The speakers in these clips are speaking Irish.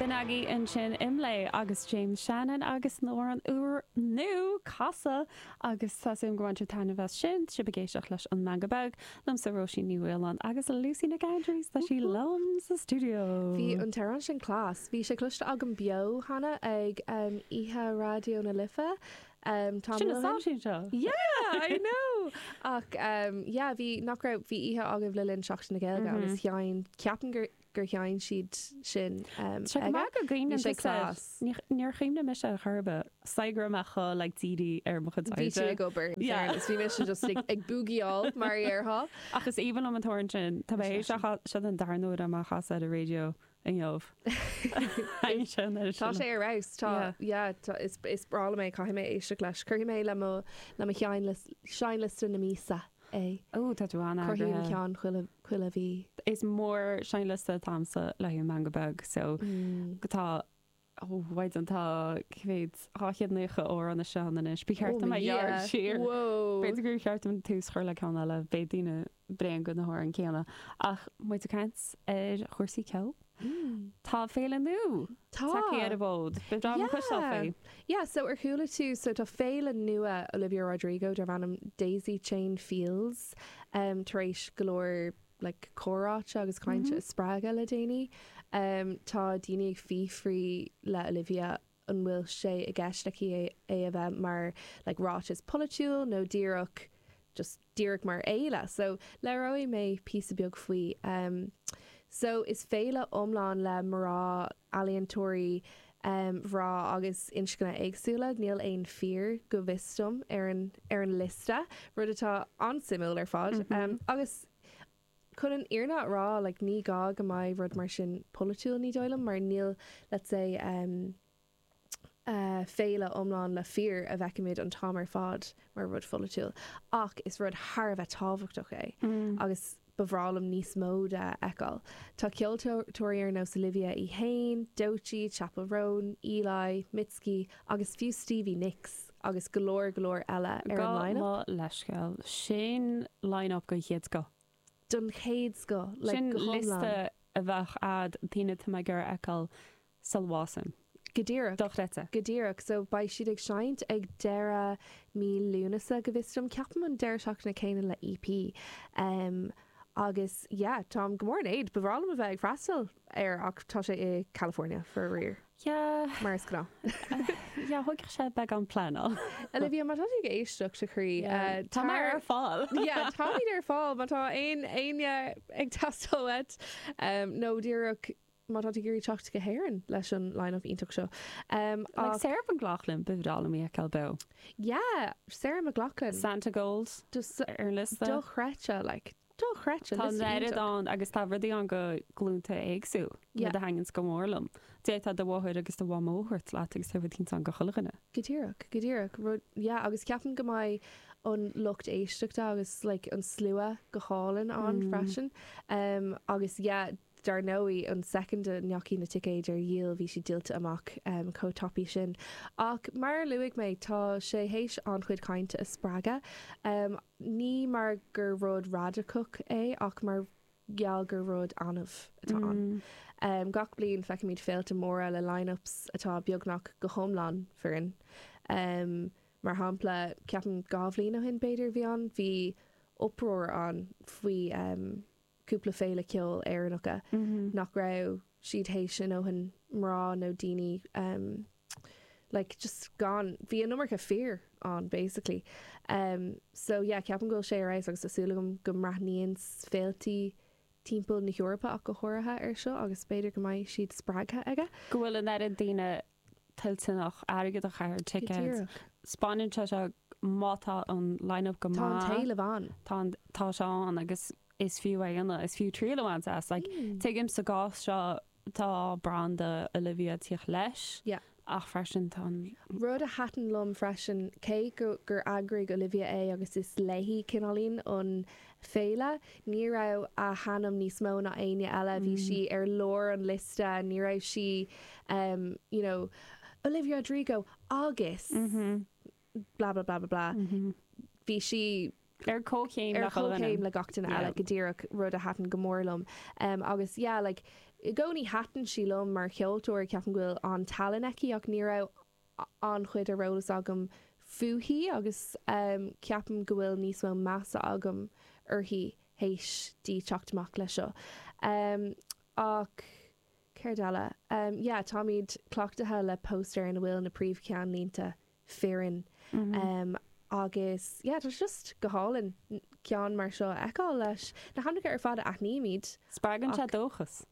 B'in agaibh ansin Imlé agus James Shannon agus nuair an uair nú casadh agus tá súil agam gur bhain tú taitneamh as sin tá sibh ag éisteacht leis an Meangadh Beag. Liomsa Róisín Ní Mhaoláin agus Lucy Nic Aindreas tá sí liom sa Studio. Bhí an t-amhrán sin class. Bhí sé cloiste agam beo cheana ag oíche Raidió na Life. Ehm, tamall ó shin. Sin an tseachtain seo! Yeah, I know! Ach, ehm, yeah, bhí, nach raibh, bhí oíche agaibh le linn Seachtain na Gaeilge agus sheinn, ceapaim gur, gur sheinn siad sin, ehm, Is é go aige. maith go gcaoineann Bhí sé tusa, class. níor, níor chuimhnigh mise ar chor ar bith, chuir mé like DD ar mo chuid airde. Bhí tú ag obair, in Yeah. fairness. Bhí mise just ag, ag búgíáil, mar a dhéarfá. Ach is aoibhinn liom an t-amhrán sin. Tá mé Is é ag, sin. seach, a, seo é an dara huair dom é a chasadh ar an raidió inniu. Thaitin sé an oiread sin. Tá sé ar fheabhas. Tá, yeah, tá, is, is breá liom é, caithfidh mé éisteacht leis. Cuirfidh mé le mo, le mo sheinnlis, seinnliosta na míosa é. Ó, tá tú an-eagraithe. Cruthaím ceann chuile, chuile mhí. Is mór an seinnliosta atá agamsa le Meangadh Beag, so, tá, Ó, mhaighdean, tá, cé mhéad, dhá chéad nócha amhrán istigh ann anois. Ba cheart dom é a ghearradh siar. B'fhéidir gur cheart dom tús a chur le ceann eile, beidh daoine bréan de na hamhráin céanna. Ach agus muid ag caint ar chúrsaí ceoil, tá féile nua tagtha ar an bhfód. Beidh dream an Chois Life faoi. Yeah, so ar chuala tú, so tá féile nua Olivia Rodrigo darb ainm Daisy Chain Fields tar éis go leor, like comhráite agus cainte a spreagadh le déanaí. Tá daoine ag fiafraí de Olivia an bhfuil sé i gceist aici é a bheith mar like ráiteas polaitiúil nó díreach just díreach mar fhéile. So labhróidh mé píosa beag faoi. So is féile iomlán le mná, ealaíontóirí, um mná agus inscní éagsúla, níl aon fir, go bhfios dom, ar an ar an liosta, rud atá an-suimiúil ar fad. Um agus chun an fhírinne a rá, like ní gá go mbeadh rud mar sin polaitiúil, ní dóigh liom, mar níl, let's say, um eh féile iomlán le fir a bhfeicimid an t-am ar fad mar rud polaitiúil, ach is rud thar a bheith tábhachtach é, agus. Ba bhreá liom níos mó de a fheiceáil. Tá ceoltóirí ar nós Olivia í fhéin, Doechii, Chappell Roan, Eli, Mitski agus fiú Stevie Nicks agus go leor go leor eile ar an line up. Gabh mo leithscéal, sin line up den chéad scoth. Den chéad scoth, like go hiomlán. Sin liosta a bheadh agat de dhaoine atá mé ag iarraidh a fheiceáil Solwassen. Go díreach. Dochreidte. Go díreach. So, beidh siad ag seinnt ag deireadh mí Lúnasa, go bhfios dom, ceapaim an deireadh seachtaine céanna le EP. Agus, yeah, táim go mór in éad, ba bhreá liom a bheith ag freastal air ach tá sé i California, faraor. Yeah. Mar is gnáth. Yeah, thógfadh sé beagán pleanáil. Olivia, má tá tú ag éisteacht, a chroí, tar. Táimid ar fáil. Yeah, táimid ar fáil má tá aon éinne ag teastáil uait. Nó díreach. má tá tú ag iarraidh teacht go hÉirinn leis an line-up iontach seo. Like Sarah McLachlan, Bikini Kill a mbíodh Kel Bow. Yeah, Sarah McLachlan. Santigold ar an liosta. Dochreidte, like, dochreidte. Tá an oiread ann agus tá rudaí ann do ghlúnta éagsúil, rud a thaitníonns go mór liom. D'fhéadfá do mháthair agus do mhamó a thabhairt leat agus tá rudaí ansan do chuile dhuine. Go díreach, go díreach. Rud, yeah, agus ceapaim go mbeidh an lucht éisteachta agus, like, an slua go hálainn ann freisin. Agus, yeah. Dar ndóigh, an soicind a ndeachaigh na ticéid ar díol bhí siad díolta amach chomh tapaidh sin. Ach mar a luaigh mé, tá sé théis an-chuid cainte a spreagadh, ní mar gur rud raideacach é ach mar gheall gur rud annamh atá ann. Gach bliain feicimid féilte móra le line-ups atá beagnach go hiomlán fireann. Mar shampla, ceapaim dhá bhliain ó shin, b'fhéidir, bhí ann, bhí uproar ann faoi. cúpla féile ceoil Éireannacha nach raibh siad théis a ndóthain mná nó daoine like just gan bhí an iomarca fir ann basically so yeah ceapaim go bhfuil sé ar fheabhas agus tá súil agam go mbreathnaíonn féiltí timpeall na hEorpa ach go háirithe ar seo agus b'fhéidir go mbeidh siad spreagtha aige. Go bhfuil an oiread daoine toilteanach airgead a chaitheamh ar thicéad. Go díreach. Spáineann sé seo, má tá an line-up go maith. Tá an t-éileamh ann. Tá an, tá sé ann agus is fiú é ana, is fiú triail a bhaint as. Like, tuigim sa gcás seo tá branda Olivia tíocht leis. Yeah. Ach freisin tá an. Rud a thaitin liom freisin, cé go, gur eagraigh Olivia é agus is léithi cineáilín an féile. Ní raibh a hainm níos mó ná éinne eile, bhí sí i lár an liosta, ní raibh sí you know Olivia Rodrigo agus blah blah blah blah blah, bhí sí ar comhchéim ar comhchéim le gach duine eile go díreach, rud a thaitin go mór liom agus yeah like i gcónaí thaitin sí liom mar cheoltóir, ceapaim go bhfuil an-tallann aici ach ní raibh an-chuid ar eolas agam fúithi agus ceapaim go bhfuil níos mó measa agam uirthi théis di teacht amach leis seo. Ach céard eile? Yeah, táimid cleachtaithe le póstaeir ina bhfuil na príomhcheannlínte fireann agus yeah, tá sé just go hálainn ceann mar seo a fheiceáil leis na hainmneacha ar fad a aithnímid. Spreagann sé dóchas.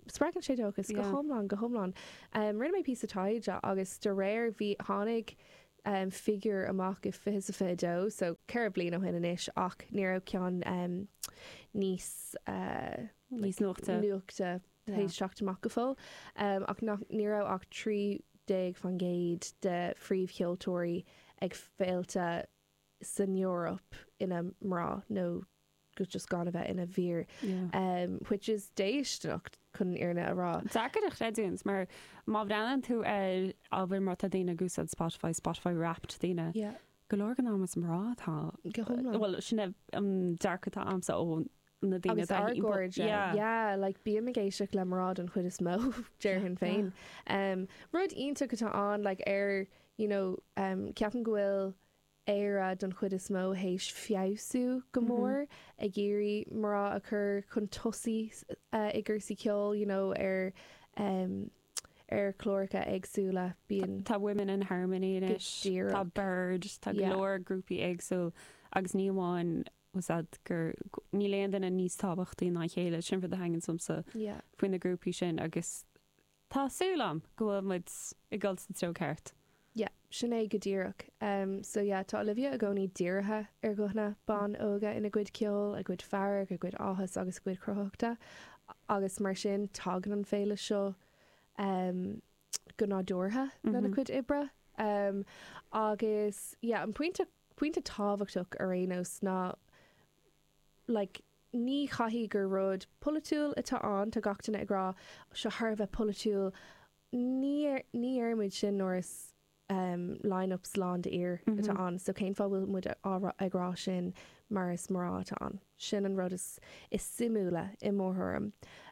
Spreagann sé dóchas, go hiomlán, go hiomlán. Rinne mé píosa taighde agus de réir, bhí, tháinig figiúr amach i fiche, sa fiche dó, so ceithre bliain ó shin anois ach ní raibh ceann níos, níos nuachta, nuachta théis teacht amach go fóill ach nach, ní raibh ach trí déag fan gcéad de phríomhcheoltóirí ag féilte san Eoraip ina mná nó, agus just gan a bheith ina bhfir, which is déistineach chun an fhírinne a rá. Deacair a chreidiúint mar má bhreathnaíonn tú ar an mbealach atá daoine ag úsáid Spotify, Spotify Wrapped daoine, go leor den am is mná atá, bhuel sin é an dearcadh atá agamsa ó na daoine atá ar gcairde. Yeah, yeah, like bím ag éisteacht le mná den chuid is mó déarfainn féin. Rud iontach atá ann like ar you know ceapaim go bhfuil Éire don chuid is mó théis feabhsú go mór, ag iarraidh mná a chur chun tosaigh i gcúrsaí ceoil, you know, ar ar chláracha éagsúla, bíonn. Tá Women in Harmony anois, tá Bird, tá go leor grúpaí éagsúil agus ní amháin as ucht gur, níl aon duine níos tábhachtaí ná a chéile, sin rud a thaitníonn liomsa faoi na grúpaí sin agus Tá súil a'm go bhfuil muid ag dul sa treo ceart. Yeah, sin é go díreach. Em, so yeah, tá Olivia i gcónaí dírithe ar ghuthanna ban óga ina gcuid ceoil, a gcuid fearg, a gcuid áthas agus a gcuid cruthaitheachta agus mar sin tagann an féile seo, em, go nádúrtha lena cuid oibre. Em, agus yeah, an pointe, pointe tábhachtach ar aon nós ná like, ní chaithfidh gur rud polaitiúil atá ann. Tá gach duine ag rá, seo thar a bheith polaitiúil. Ní, ní dhéarfaimid sin nuair is ehm line-ups lán de fhir atá ann. So cén fáth a bhfuil muid ag rá sin mar is mná atá ann. Sin an rud is suimiúla i mo thuairim.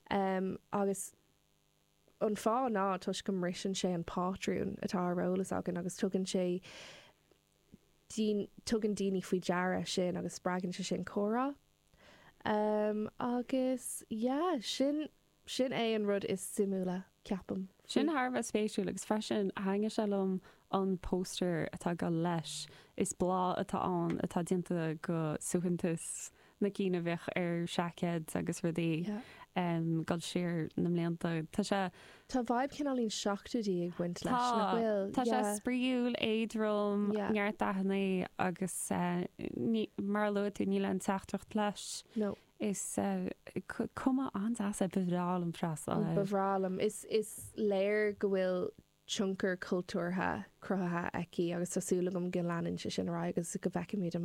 Ehm agus an fáth ná toisc go mbriseann sé an pátrún atá ar eolas againn agus tugann sé, tugann daoine faoi deara sin agus spreagann sé sin comhrá. Agus yeah, sin, sin é an rud is suimiúla, ceapaim, faoi. Sin thar a bheith spéisiúil agus freisin thaitnigh sé liom an póstaer atá ag dul leis. Is bláth atá ann atá déanta go suaitheantas na cinn a bhíodh ar seaicéid agus rudaí ag dul siar na mblianta. Tá sé. Tá vibe cineál na seachtóidí ag baint leis, nach bhfuil? Tá. Tá sé spraíúil, éadrom, neart dathanna agus ní, mar a luaigh tú, níl aon teachtaireacht leis. No. Is cuma an-deas é. Ba bhreá liom freastal air. Ba bhreá liom. Is léir go bhfuil tionchar cultúrtha cruthaithe aici agus tá súil agam go leanann sé sin ar aghaidh agus go bhfeicfimid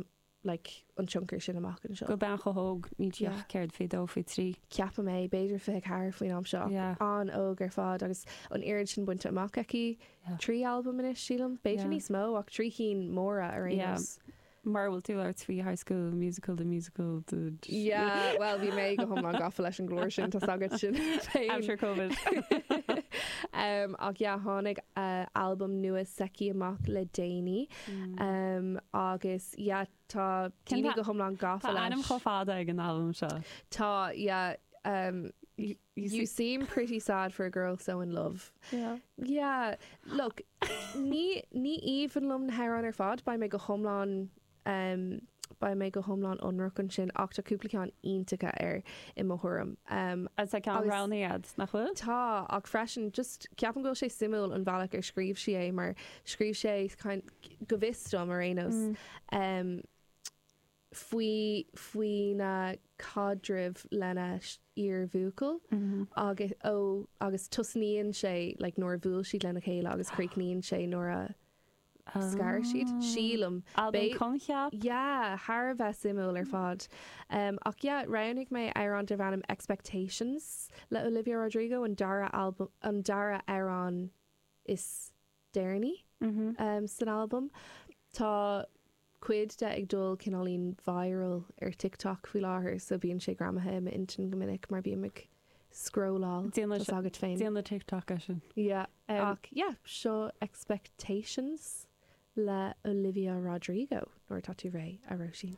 like, an tionchar sin amach anseo. do bhean chomh hóg, níl Yeah. sí ach fiche dó, fiche trí. ceapaim é, b'fhéidir fiche ceathair faoin am seo. Yeah. An-óg ar fad agus an oiread sin bainte amach aici. Yeah. Trí albam anois, sílim. B'fhéidir Yeah. níos mó, ach trí cinn mhóra ar aon Yeah. nós. Mara bhfuil tú ag labhairt faoi High School Musical, The Musical, the. Yeah, well, bhí mé go hiomlán gafa leis an gclár sin, tá a fhios agat féin. I'm sure Covid. Um, ach yeah, tháinig uh, albam nua s'aici amach le déanaí. Agus, yeah, tá daoine go hiomlán gafa leis. Tá ainm chomh fada ag an albam seo. Tá, yeah, You seem pretty sad for a girl so in love. Yeah. Yeah, look, ní aoibhinn liom na hamhráin ar fad, beidh mé go hiomlán, beidh mé go hiomlán ionraic ansin, ach tá cúpla ceann iontacha air i mo thuairim. Agus tá ceann bhreá iad, nach bhfuil? Tá, ach freisin, just, ceapaim go bhfuil sé suimiúil an bhealach ar scríobh sí é, mar Scríobh sí é, go bhfios dom ar aon nós, faoi faoina caidreamh lena iar-bhuachaill agus ó agus tosnaíonn sé like nuair a bhuail siad lena chéile agus críochnaíonn sé nuair a scar siad, sílim. Albam coincheapa? Yeah, thar a bheith suimiúil ar fad. Ach yeah, roghnaigh mé amhrán darb ainm Expectations le Olivia Rodrigo, an dara albam an dara amhrán is deireanaí san albam. Tá cuid de ag dul cineáilín viral ar TikTok faoi láthair, so bíonn sé greamaithe i m'intinn go minic mar bím ag scrolláil tá a fhios agat féin. Déan na TikTok eisean. Yeah. Ach yeah, seo Expectations le Olivia Rodrigo, nuair atá tú réidh, a Róisín.